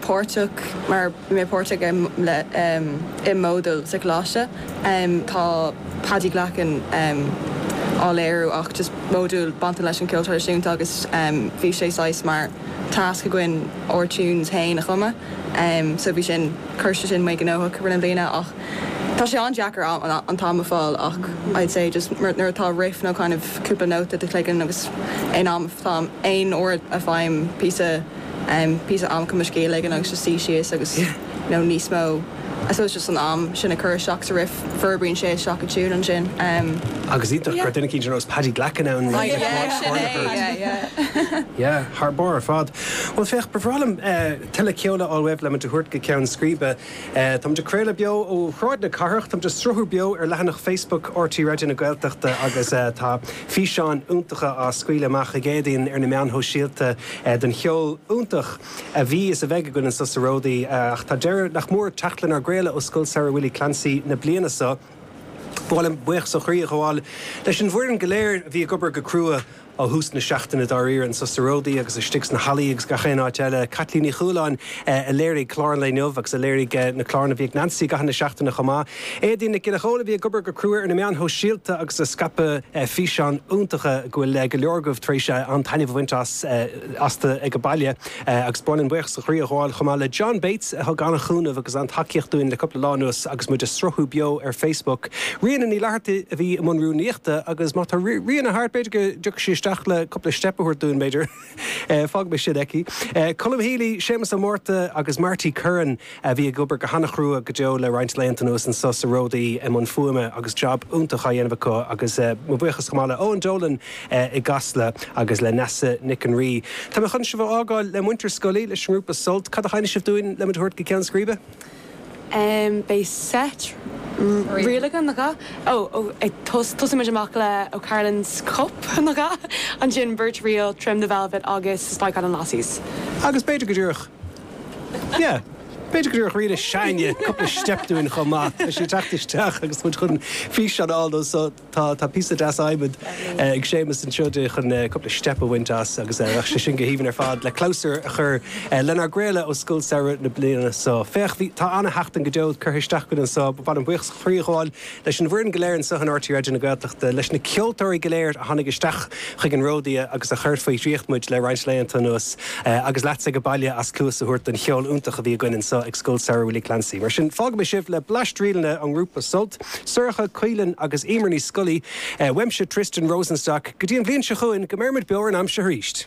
páirteach, mar bhí mé páirteach i módúl sa choláiste. le Paddy Glackin á léiriú ach just módúl bainteach leis an cheol traidisiúnta agus bhí sé saghas mar tasc againn ár tunes féin a chumadh. So bhí sin, chuir sé sin mé gnóthach i rith na bliana ach tá sé an-deacair an t-am a fáil ach I'd say just nuair atá riff nó kind of cúpla nóta i do chloigeann agus aon am, aon uair a fhaighim píosa, píosa ama cumasc éigin agus just suí síos agus you know níos mó I suppose just an am sin a chur isteach sa riff forbraíonn sé isteach i dtiúin ansin. Agus iontach go raibh duine éicint ar nós Paddy Glackin ann le le clár clár na hoird. Yeah thar barr ar fad. Bhuel féach ba bhreá liom tuilleadh ceoil a fháil uaibh le muid a thabhairt go ceann scríbe. Táimid ag craoladh beo ó Shráid na Cathrach. Táimid ag sruthú beo ar leathanach Facebook RTÉ Raidió na Gaeltachta agus tá físeáin iontacha á scaoileadh amach ag Éadaoin ar na meáin shóisialta den cheol iontach a bhí is a bheidh againn anseo sa Ródaí. Ach tá deireadh nach mór ag teacht lenár gcraoladh ó Scoil Samhraidh Willie Clancy na bliana seo. Ba mhaith liom buíochas ó chroí a ghabháil leis an bhfoireann go léir a bhí ag obair go crua ó thús na seachtaine dáiríre, anseo sa Ródaí agus istigh sna hallaí agus gach aon áit eile. Caitlín Ní Chualáin a léirigh clár an lae inniu agus a léirigh na cláranna a bhí ag Neansaí i gcaitheamh na seachtaine chomh maith. Éadaoin Nic Giolla Chomhaill a bhí ag obair go crua ar na meáin shóisialta agus ag scaipeadh físeáin iontacha go bhfuil go leor agaibh tar éis an-taitneamh a bhaint astu ag an mbaile. Agus ba mhaith liom buíochas ó chroí a ghabháil chomh maith le John Bates a thug an-chúnamh agus an-tacaíocht dúinn le cúpla lá anuas agus muid ag sruthú beo ar Facebook. Ríona Ní Fhlatharta a bhí i mbun rúnaíochta agus má tá Ríona thart b'fhéidir go dtiocfaidh sí isteach le cúpla steip a thabhairt dúinn, b'fhéidir. Fágaimis sin aici. Colm Healy, Séamas Ó Márta agus Marty Curran a bhí ag obair go han-chrua go deo le roinnt laethanta anuas anso sa Ródaí i mbun fuaime agus jab iontach á dhéanamh acu agus mo bhuíochas chomh maith le Eoin Dolan i gCasla agus le Neasa Nic an Rí. Tá mé chun sibh a fhágáil le muintir Scolaí, leis an ngrúpa Sult. Cad a sheinnfidh sibh dúinn le muid a thabhairt go ceann scríbe? Beidh seit ríleacha, nach ea? Ó, ag tos, tosóimid amach le O'Carolan's Cup, nach ea? Ansin beirt ríl, Trim the Velvet agus Spike Island Lasses. Agus b'fhéidir go díreach. Yeah. B'fhéidir go dtabharfadh Ríona Shane cúpla steip dúinn chomh maith. Tá sí ag teacht isteach agus muid chun físeán a fháil de so tá tá píosa deas adhmaid ag Séamus anseo di chun cúpla steip a bhaint as agus bheadh sé sin go haoibhinn ar fad le clabhsúr a chur lenár gcraoladh ó Scoil Samhraidh na bliana so. Féach, bhí, tá ana-sheachtain go deo curtha isteach againn anso, ba mhaith liom buíochas ó chroí a ghabháil leis an bhfoireann go léir anseo in RTÉ Raidió na Gaeltachta, leis na ceoltóirí go léir a tháinig isteach chuig an Ródaí agus a chuir faoi dhraíocht muid le roinnt laethanta anuas, agus leatsa ag an mbaile as cluas a thabhairt don cheol iontach a bhí againn anseo ag Scoil Samhraidh Willie Clancy. Mar sin, fágaimis sibh le bleaist ríleanna ón ngrúpa Sult, Sorcha, Caoilfhionn agus Éimear Ní Scolaí, uaimse, Tristan Rosenstock, go dtí an bhliain seo chugainn, go mbeirimid beo ar an am seo arís!